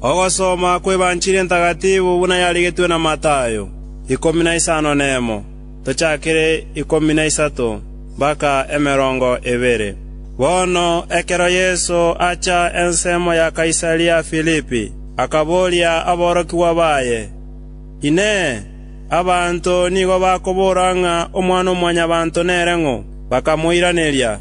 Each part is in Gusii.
Ogosoma kw'Ebanchiri Entagatifu buna yarigetwe na Matayo, ikomi na isano nemo, tochakere ikomi na isato mpaka emerongo ebere. Bono ekero Yeso acha ensemo ya Kaisaria Filipi, akaboria aborokigwa baye, “Inee! Abanto nigo bakobora ng'a Omwana-o-mwanyabanto nere ng'o?” Bakamoiraneria.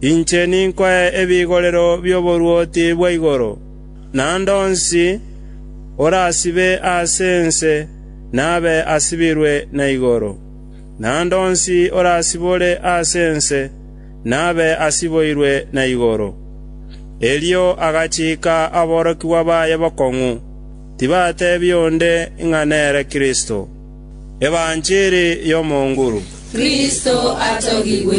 Inche ninkoe ebigorero bi'oboruoti bwa igoro, naende onsi orasibe ase ense nabe asibirwe na igoro, naende onsi orasibore ase ense nabe asiboirwe na igoro. Erio agachiika aborokigwa baye bokong'u, tibateebia onde ng'a nere Kristo. Evancheri y'omonguru. Kristo atogigwe.